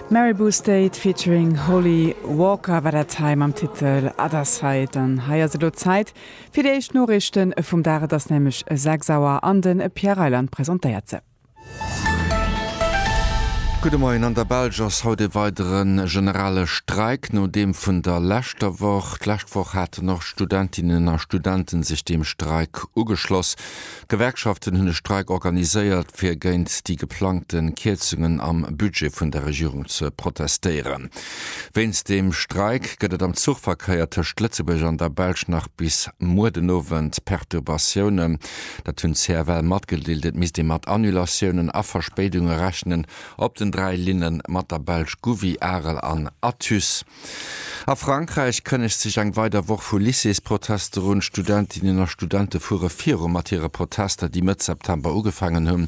Maribou State featuring Holly Walker war dat hei mam Titel Other Side. An hei ass elo Zäit fir déi éischt Noriichte vum Dag. Et ass nämlech 6 Auer an de Pierre Reyland presentéiert se. Gudde Moien, An der Belsch ass haut ee weidere generale Streik no deem vun der leschter Woch. D'lescht Woch haten och Studentinnen a Studente sech dem Streik ugeschloss. D'Gewerkschaften hunn e Streik organiséiert, fir géint déi geplangte Kierzungen am Budget vun der Regierung ze protestéieren. Wéinst dem Streik gëtt et am Zuchverkéier tëscht Lëtzebuerg an der Belsch nach bis muer den Owend Perturbatiounen. Dat hunn d'CFL matgedeelt. Et misst ee mat Annulatiounen a Verspéidunge rechnen op den dräi Linne mat der Belsch Gouvy, Arel an Athus. A Frankräich kënnegt sech eng weider Woch vu Lycéesprotester un. Studentinnen a Studente fuere viru mat hire Protester, déi Mëtt September ugefaangen hunn.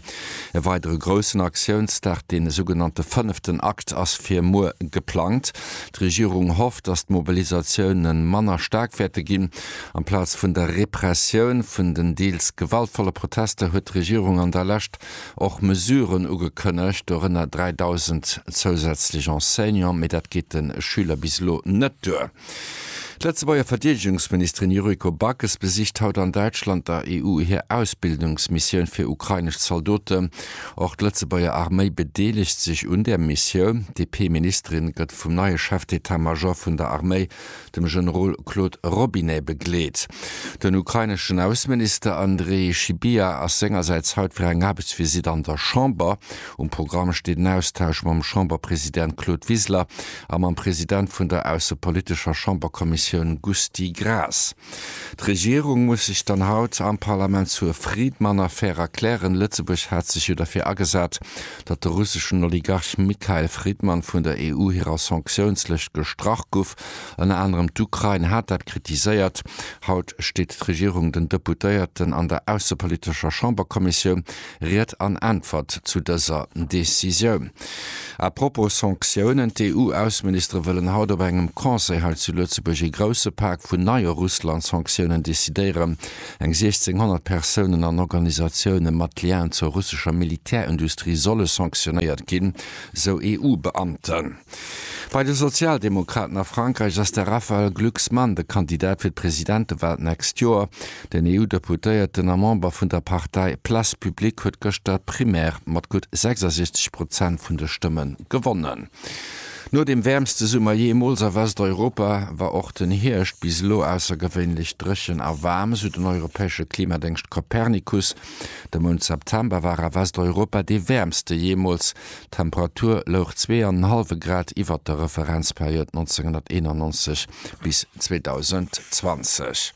E weidere groussen Aktiounsdag, dee sougenannte fënneften Akt, ass fir muer geplangt. D'Regierung hofft, datt d'Mobilisatioune manner staark wäerte ginn. Amplaz vun der Repressioun vun den deels gewaltvolle Protester huet d'Regierung an der Lescht och Mesuren ugekënnegt, dorënner 3.000 zousätzlech Enseignants, mee dat geet de Schüler bis elo net duer. D'Lëtzebuerger Verdeedegungsministerin Yuriko Backes besicht haut an Däitschland der EU hir Ausbildungsmissioun fir ukrainesch Zaldoten. Och d'Lëtzebuerger Arméi bedeelegt sech un där Missioun. D'DP-Ministerin gëtt vum neie Chef d'Etat-Major vun der Arméi dem Generol Claude Robinet begleet. Den ukraineschen Ausseminister Andrii Sybiha ass sengersäits haut fir eng Aarbechtsvisitt an der Chamber. Um Programm steet en Austausch mam Chamberpresident Claude Wiseler a mam President vun der aussepolitescher Chamberkommissioun Gusty Graas. D'Regierung muss sech dann haut am Parlament zur Friedmann-Affär erklären. Lëtzebuerg hat sech jo derfir agesat, datt de russeschen Oligarch Mikhail Fridman vun der EU hirer Sanktiounslëscht gestrach gouf. Ënner anerem d'Ukrain hat dat kritiséiert. Haut steet d'Regierung den Deputéierten an der aussepolitescher Chamberkommissioun Ried an Äntwert zu dëser Decisioun. A propos Sanktiounen, D'EU-Ausseministere wëllen haut op engem Conseil hei zu Lëtzebuerg ee grousse Pak vun neie Russland-Sanktiounen decidéieren. Eng 1.600 Persounen an Organisatioune mat Lien zur russescher Militärindustrie solle sanctionéiert ginn, sou EU-Beamten. Bei de Sozialdemokraten a Frankräich ass de Raphaël Glucksmann de Kandidat fir d'Presidentewal d'nächst Joer. Den EU-Deputéierten a Member vun der Partei Place Publique huet gëschter d'Primaire mat gutt 66 Prozent vun de Stëmme gewonnen. No dem wäermste Summer jeemools a Westeuropa war och den Hierscht bis elo aussergewéinlech dréchen a waarm, sou den europäesche Klimadéngscht Copernicus. De Mount September war a Westeuropa dee wäermste jeemools, d'Temperatur louch zwee an en hallwe Grad iwwert der Referenzperiod 1991 bis 2020.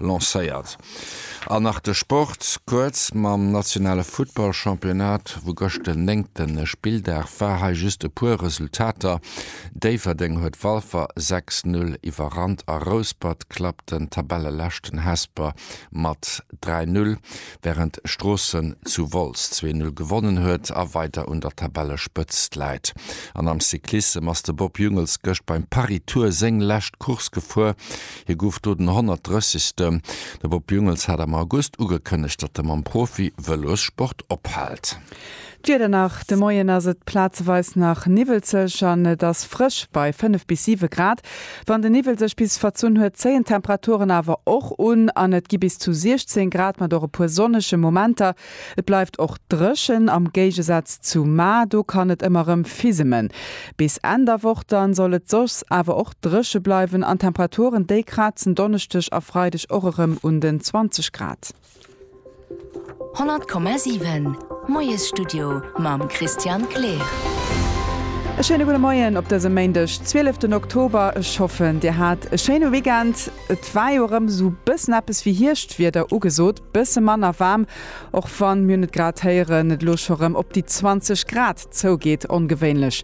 lancéiert. An nach de Sport kuerz, Mam nationale Futtball-Championnat, wou gëscht den néngte Spilldag war, hei just e puer Resultater, Déifferdeng huet Walfer 6, 0 iwwerrannt a Rouspert klappt den Tabelleleschten Hesper mat 3, 0, wärend Stroossen zu Wolz 2, 0 gewonnen huet a weider un der Tabellespëtzt läit. An am Cyclissem ass de Bob Jungels gëscht beim Paris-Tour séng lescht Course gefuer. Hie gouf do den 130. De Bob Jungels hat am August ugekënnegt, datt e mam Profi-Vëlossport ophält. D'Wieder nach, De Moien ass et plazeweis nach niwwelzeg an et ass frësch bei 5 bis 7 Grad. Wann de Niwwel sech bis verzunn huet, zéien d'Temperaturen awer och un an et gi bis zu 16 Grad mat och e puer sonnege Momenter. Et bleift och dréchen, am Géigesaz zu Mar, do kann et ëmmer rëm fisemen. Bis Enn der Woch dann soll et soss awer och dréche bleiwen an d'Temperaturen, déi krazen Donneschdeg a Freideg och erëm un den 20 Grad. 100,7 Moiesstudio mam Christian Kleer. E schéine gudde Moien op dësem Méindeg, 12 Oktober. Ech hoffen, Dir hat e schéine Weekend. Et war jo erëm esou bëssen eppes wéi Hierschtwieder ugesot. Bësse manner waarm, och wann mir net grad héieren, et elo scho rem op déi 20 Grad zougeet. Ongewéinlech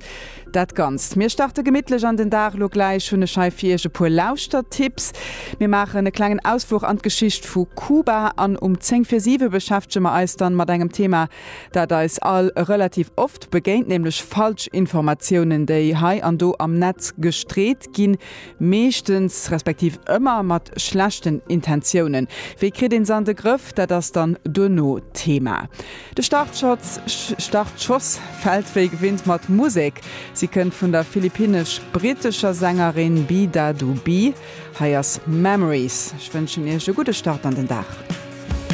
dat Ganzt. Mir starte gemittlech an den Dag. Lo gläich hunn ech hei fir Iech e puer Lauschtertipps. Mir maachen e klengen Ausfluch an d'Geschicht vu Kuba an um 10 vir 7 beschäftege mer eis dann mat engem Thema, dat eis all relativ oft begéint, nämlech Falschinformatiounen, déi hei an do am Netz gestreet ginn. Meeschtens, respektiv ëmmer mat schlechten Intentiounen. Wéi kritt een se an de Grëff? Dat ass dann duerno d'Thema. De Startschotz, Startschoss, fält wéi gewinnt mat Musek. Si kënnt vun der philippinesch-brittescher Sängerin Bida Du Bee. Hei ass Memories. Ech wënschen iech e gudde Start an den Dag.